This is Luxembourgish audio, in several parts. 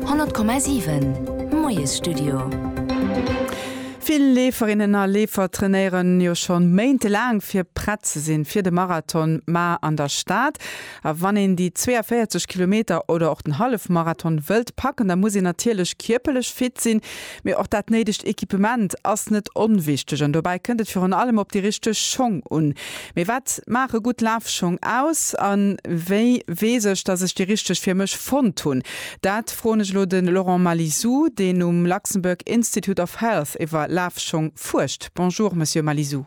100,7 Moiesstudio. Vill Leeferinnen a Leefer trainéieren jo schonn méintelaang fir prett ze sinn fir de Marathon, ma an der Stad. A wann een déi 42 Kilometer oder och den Hallefmarathon wëllt packen, da muss een natierlech kierperlech fit sinn. Mee och dat néidegt Equipement ass net onwichteg an dobäi kënnt et virun allem op déi richteg Schong un. Mee wat maache gutt Lafschong aus a wéi weess ech, datt ech déi richteg fir mech fonnt hunn? Dat froen ech elo de Laurent Malizou, deen um Luxembourg Institute of Health iwwer Lafschong fuerscht. Bonjour Monsieur Malizou.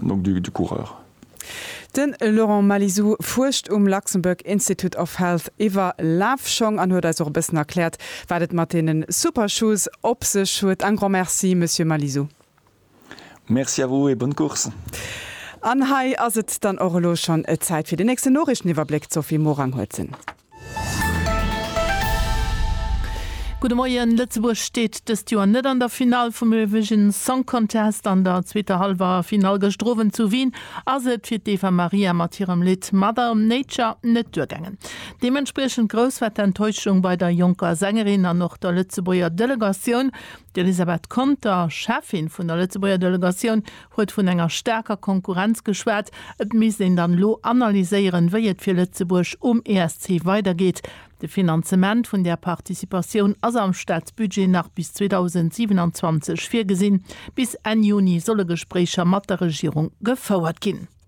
nom du du coureur. De Laurent Malizou fuerscht um Luxembourg Institute of Health iwwer Lafschong an huet eis och e bëssen erkläert, wat et mat deene Supershoes op sech huet. Un grand merci, Monsieur Malizou. Merci à vous et bonne course. An hei ass et dann och elo schonn Zäit fir den nächsten Noriichteniwwerbléck. D'Sophie Morang huet en. Gudde Moien, Lëtzebuerg steet dëst Joer net an der Finall vum Eurovision Song Contest. An der zweeter Hallwer Finall gëschter Owend zu Wien ass et fir d'Eva Maria mat hirem Lidd Mother Nature net duergaangen. Deementspriechend grouss war d'Enttäuschung bei der jonker Sängerin an och der Lëtzebuerger Delegatioun. D'Elisabeth Conter, Cheffin vun der Lëtzebuerger Delegatioun huet vun enger staarker Konkurrenz geschwat. Et misst een dann elo analyséieren, wéi et fir Lëtzebuerg um ESC weidergeet. De Finanzement vun där Participatioun ass am Staatsbudget nach bis 2027 virgesinn. Bis Enn Juni solle Gespréicher mat der Regierung gefouert ginn.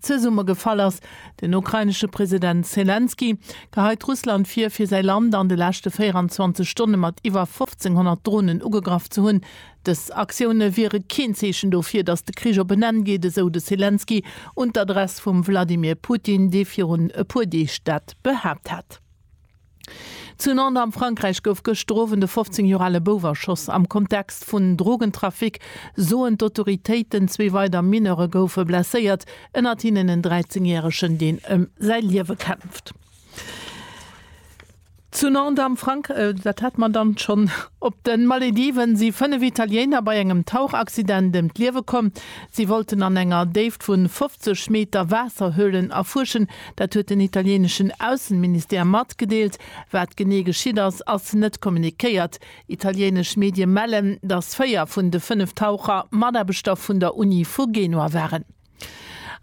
Zesummegefall ass. Den ukrainesche President Selenskyj geheit Russland vir, fir säi Land an de leschte 24 Stonne mat iwwer 1.500 Dronen ugegraff ze hunn. Dës Aktioune wiere keen Zeechen dofir, datt de Krich op en Enn geet, esou de Selenskyj un d'Adress vum Wladimir Putin, dee virun e puer Deeg dat behaapt hat. Zu Nantes am Frankräich gouf gëschter Owend e 15 Joer ale Bouf erschoss. Am Kontext vun Drogentrafic soen d'Autoritéiten, zwee weider Mineure goufe blesséiert, ënnert hinnen en 13 Järegen, deen ëm säi Liewe kämpft. Zu Nantes am Frank. Dat hat mer dann schonn. Op de Malediven si 5 Italiéiner bei engem Tauchaccident ëm d'Liewe komm. Si wollten an enger Déift vun 50 Meter Waasserhöhlen erfuerschen, Dat huet den italieneschen Aussenministère matgedeelt. Wat genee geschitt ass, ass net kommuniquéiert. Italienesch Medie mellen, datt véier vun de fënnef Taucher Mataarbechter vun der Uni vu Genua waren.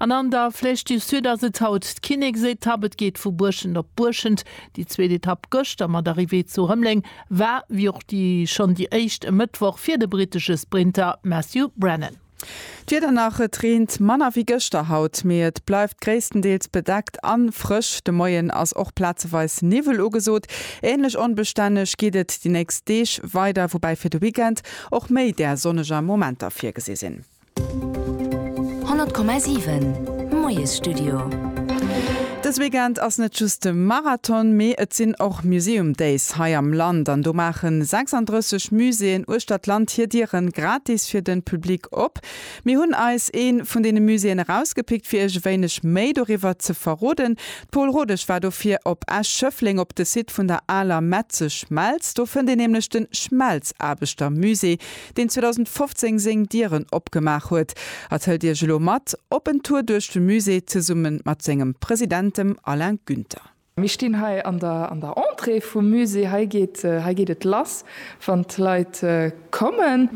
An an der Flèche du Sud ass et haut d'Kinneksetapp. Et geet vu Buerschent op Buerschent. Déi zweet Etapp gëschter mat Arrivée zu Rëmleng war, wéi och déi schonn déi éischt e Mëttwoch, fir de brittesche Sprinter Matthew Brennan. D'Wieder nach, Et reent manner wéi gëschter haut, mee et bleift gréisstendeels bedeckt a frësch. De Moien ass och plazeweis Niwwel ugesot. Änlech onbestänneg geet et déi nächst Deeg weider, woubäi fir de Weekend och méi där sonneger Momenter virgesi sinn. 100,7. Moiesstudio. Dës Weekend ass net just de Marathon, mee et sinn och Museum Days hei am Land an do maache 36 Muséeën uechter d'Land hir Diere gratis fir de Public op. Mir hunn eis ee vun deene Muséeën erausgepickt fir iech e wéineg méi doriwwer ze verroden. D'Pole Rodesch war dofir op Esch-Schëffleng op de Site vun der aler Metzeschmelz. Do fënnt een nämlech de Schmelzaarbechtermusée. deen 2015 seng Dieren opgemaach huet, a tellt Iech elo mat op en Tour duerch de Musée zesumme mat sengem President, dem Alain Günther. Mir stinn hei an der Entrée vum Musée. Hei geet et lass, wann d'Leit kommen.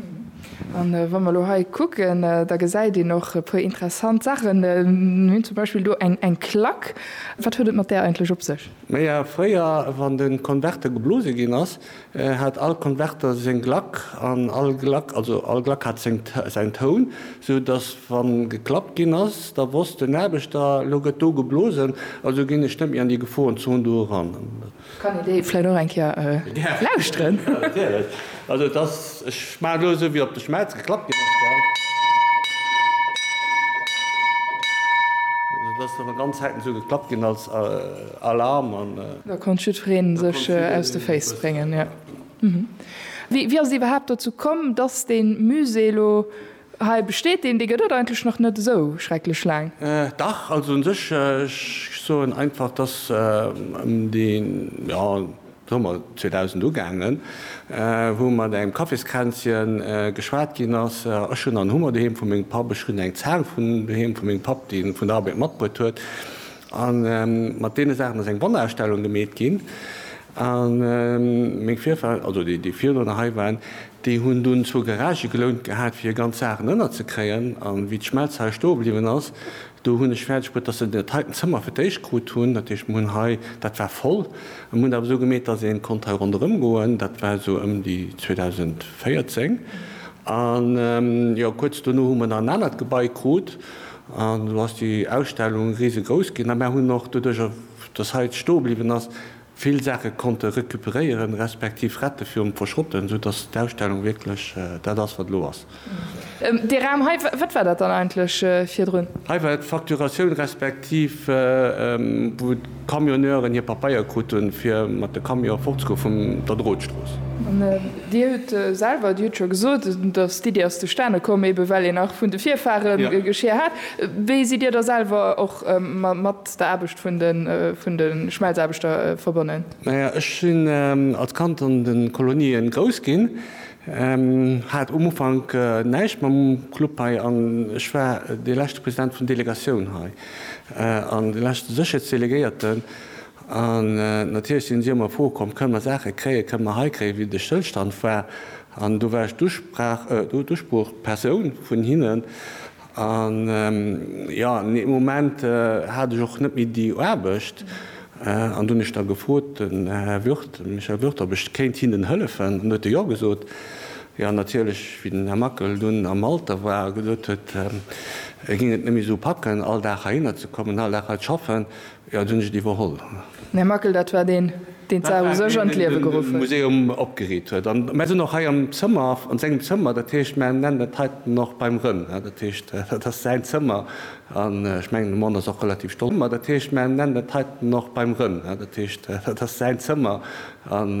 A wa mer elo hei kucken, da gesäit een och e puer interessant Saachen. Mir hunn zum Beispill do eng Klack. Wat huet et mat där eigentlech op sech? Naja, fréier, wann de Konverte geblose ginn ass, hat all Konverter seng Glack an all Glack, also all Glack hat säin Toun, sou datt wann geklappt ginn ass, da wosst den Aarbechter, elo gëtt do geblosen, also ginn ech net méi an déi Geforenzon do eran. Kann een déi vläit och eng Kéier lauschteren? Jo, natierlech. Also et ass, ech maachen elo esou wéi op de Schmelz geklappt ginn ass, well et ass jo nach ganz selten esou geklappt ginn als. Alarm an. Da konnt jiddfereen sech aus de Féiss bréngen, jo. Wéi ass et iwwerhaapt dozou komm, dass dee Musée elo hei besteet? Deen, dee gëtt et eigentlech nach net esou schrecklech laang. Dach, also un sech, ech soen einfach, dass ëm de, jo, Summer 2000 ugaangen, wou mat engem Kaffiskränzchen geschwat ginn ass, ech hunn an Hummer doheem vu mengem Papp, ech hunn eng Zaang vun doheem vu mengem Papp, déi en vun der Arbeit matbruet huet, A mat deene Saachen ass eng Wonnerausstellung gemeet ginn. A meng Virfahrer, also déi, déi virdrunner hei waren, déi hunn dunn zwou Garagë gelount gehat, fir hir ganz Saachen ënnerzekréien. A wéi d'Schmelz hei stoe bliwwen ass, do hunn ech fäerdeg bruet, datt se dat heiten Zëmmer fir d'éischt krut hunn. Dat heescht, mir hunn hei, dat war voll. A mir hunn dat awer esou gemeet, datt ee konnt hei ronderëm goen. Dat war esou ëm déi 2014. A jo, kuerz dono hu mer nach en anert Gebai krut, An elo ass déi Ausstellung risegrouss ginn a mär hunn och doduerch, dass hei stoe bliwwen ass, vill Saache konnte recuperéieren, respektiv rette virum Verschrotten, soudass d'Ausstellung wierklech dat ass, wat elo ass. Dee Raum hei, wat war dat dann eigentlech virdrun? Hei war d'Facturatioun, respektiv wou. Camionneuren hir Papeier krut hunn, fir mat de Camionen fortzegoen vun der Drotstrooss. Dir hutt selwer, Dir hutt scho gesot, datt d'Iddi ass zustane komm, eebe well een nach vun de Virfahre Geschir hat. Wéi sidd Dir da selwer och mat der Aarbecht vun de Schmelzaarbechter verbonnen? Naja, ech sinn als Kand an de Kolonien grouss ginn. Hat um Ufank näischt mam Club hei an ech war dee leschte President vun Delegatioun hei an dee leschte Sécherheetsdelegéierten. An natierlech sinn si ëmmer Froe komm, kënne mer Saache kréien, kënne mer hei kréien, wéi de Stëllstand war. An do war ech d'Usprach, d'Usproochpersoun vun hinnen. An jo, nee, um Moment hat ech och net méi déi Aarbecht. An du hunn ech da gefrot, den Här Würth, den Michel Würth, ob ech kéint hinnen hëllefen. An du huet e Jo gesot. Jo, natierlech, wéi den Här Mackel dunn am Alter war a gesot huet, e géing et net méi esou packen, all Dag heihinner ze kommen, all Dag hei z'schaffen, Jo, et hunn ech et iwwerholl. Här Mackel, dat war deen, deen d'Saach u sech an d'Liewe geruff huet. Museum opgeriit huet. An mär sinn och hei am Zëmmer, an sengem Zëmmer. Dat heescht, mär nennen et heiten och beim Rënn. Dat heescht, dat ass säin Zëmmer. An ech mengen, de Mon ass och relativ stolz. Dat heescht, mär nennen et heiten och beim Rënn. Dat heescht, dat ass säin Zëmmer. An.